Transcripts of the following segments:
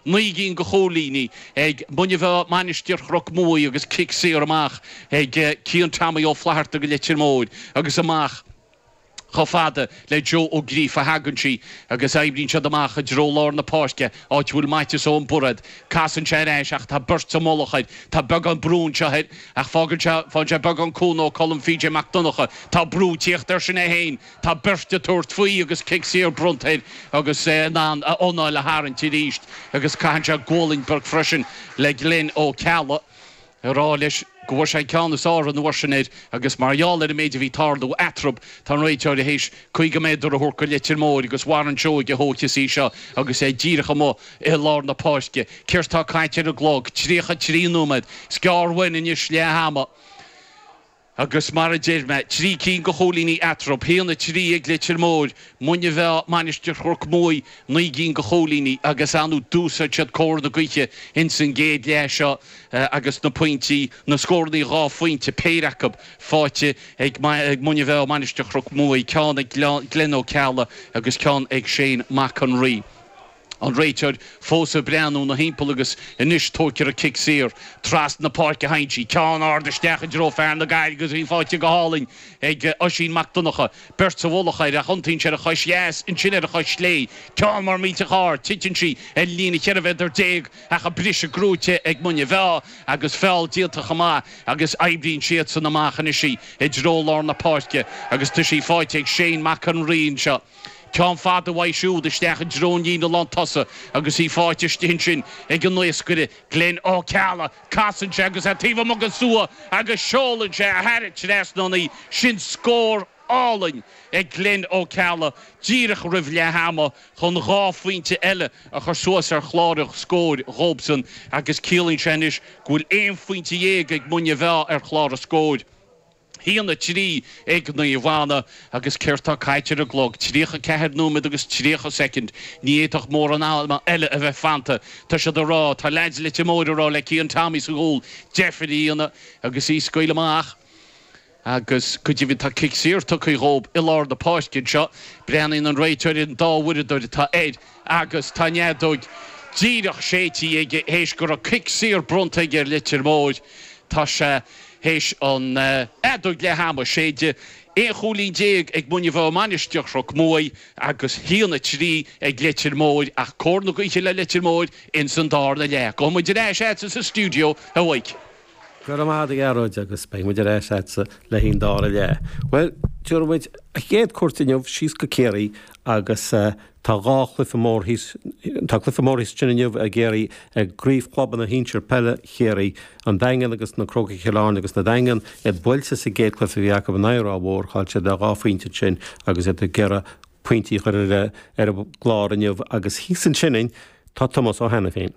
Naoi gcinn go chúilíní ag Muine Mheá, Mainistir Chnoc Muaidh agus cic saor amach ag Cian Tommy Ó Flatharta go Leitir Móir agus amach chomh fada le Joe Ó Gríofa a thagann sí agus oibríonn siad amach i dtreo lár na páirce, áit a bhfuil Maitias Eoin Bairéad. Casann sé ar ais ach tá beirt sa mullach air. Tá beagán brú anseo air ach faigheann sé beagán cúnamh ó Colm PJ Mac Donnacha. Tá brú ag tíocht air sin é féin. Tá beirt ag tabhairt faoi agus cic saor bronnta air agus é in ann a anáil a tharraingt arís agus caitheann sé gualainn beag freisin le Glenn Ó Ceallaigh ag rá leis go bhfuair sé an ceann is fearr an uair sin air agus mar gheall ar an méid a bhí ag tarlú eatrab tá an réiteoir théis 50 méadar a thabhairt go Leitir Móir agus Warren Seoige a thógfas í seo agus é díreach amuigh i lár na páirce. Céard tá caite ar an gclog? 33 nóiméad is gearr uainn anois leath ama. Agus mar a deir mé, trí cinn de chúilíní eatarthu, haon a trí ag Leitir Móir, Muine Mheá, Mainistir Chnoc Muaidh, naoi gcinn de chúilíní agus ann d'úsáid siad cóir na gaoithe ins an gcéad leath seo agus na pointí, na scórannaí dhá phointe, péire acu, faighte ag Muine Mheá, Mainistir Chnoc Muaidh, ceann ag Glen Ó Ceallaigh agus ceann ag Shane Mac an Rí. An réiteoir fós ag breathnú ina thimpeall agus anois tóigtear an cic saor. Trasna na páirce a théann sí. Ceann ard isteach i dtreo fear na Gaillimhe agus í faighte go hálainn ag Oisín Mac Donnacha. Beirt sa mhullach air ach iontaíonn sé ar a chois dheas, ansin ar a chois chlé. Ceann mór millteach ard. Titeann sí ar an líne cheithre mhéadar déag ach an briseadh gnóthaithe ag Muine Mheá agus feall déanta chomh maith agus oibríonn siadsan amach anois í i dtreo lár na páirce agus tá sí faighte ag Shane Mac an Rí anseo. Ceann fada uaidh siúd isteach i dtreo an líne lán tosaigh agus í fáite istigh ansin ag an naoscaire, Glen Ó Ceallaigh. Casann sé agus é taobh amuigh den stua agus seolann sé thar an trasnán í. Sin scór álainn ag Glen Ó Ceallaigh díreach roimh leath ama chun dhá phointe eile a chur suas ar chlár an scóir dhóibsan agus ciallaíonn sé anois go bhfuil aon phointe dhéag ag Muine Mheá ar chlár an scóir. haon a trí ag Naomh Anna agus céard tá caite ar an gclog? Tríocha ceathair nóiméad agus tríocha soicind. Ní fhéadfadh mórán ama eile a bheith fanta. Tá siad ag rá, tá leaids Leitir Móir ag rá le Cian Tommy sa gcúl, deifir a dhéanamh agus í a scaoileadh amach agus go deimhin tá cic saor tugtha dhób i lár na páirce anseo. Breathnaíonn an réiteoir ar an dá uaireadóir atá air. agus tá an fheadóig díreach séidte aige théis go raibh cic saor bronnta aige ar Leitir Móir. Tá sé théis an fheadóig leath ama a shéideadh, 11 chúilín ag Muine Mheá, Mainistir Chnoc Muaidh agus haon a trí ag Leitir Móir ach cóir na gaoithe le Leitir Móir ins an dárna leath. Gabhfaidh muid ar ais agatsa sa stiúideo uaidh. Go raibh maith agat, a Ghearóid, agus beidh muid ar ais leatsa le haon dá ar leith. Bhuel, tabharfaidh muid an chéad cuairt inniu síos go Ciarraí agus tá, tá cluiche mór thíos ansin inniu i gCiarraí i gcraobh chlubanna shinsir peile Chiarraí, An Daingean agus Na Crócaigh Chill Airne agus na Daingean iad buailte sa gcéad cluiche a bhí acu in aghaidh Ráth Mhór, chaill siad le dhá phointe ansin agus iad ag iarraidh pointí a chur ar an gclár inniu agus thíos ansin tá Tomás Ó hAiniféin.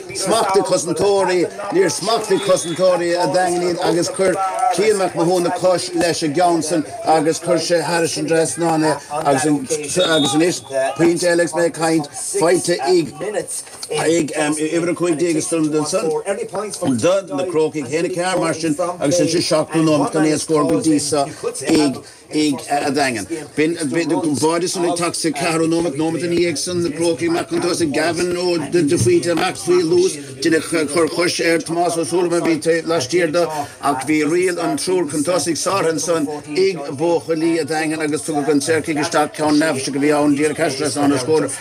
Smachtaigh cosantóirí, níor smachtaigh cosantóirí an Daingin í agus chuir Cian Mac Mathúna cos leis an gceann san agus chuir sé thar an dtrasnán é agus anois pointe eile agus mé ag caint, faighte ag ag uimhir 15 scór den scoth do na Crócaigh. Sin a ceathair mar sin agus insa seachtú nóimeat an t-aon scór go dtí seo ag. ag an Daingean. B'in a bhí de bharr di san ag teacht sa ceathrú nóimeat, nóimeat ina dhiaidh san na Crócaigh amach chun tosaigh, Gavin de Faoite amach faoi luas. Deineadh cor coise ar Thomás Ó Súilleabháin a bhí laistiar dó ach bhí riail an triúr chun tosaigh sáraithe ansan ag buachaillí an Daingin agus tugadh an saorchic isteach. Ceann neafaiseach a bhí ann, díreach thar trasnán a scór.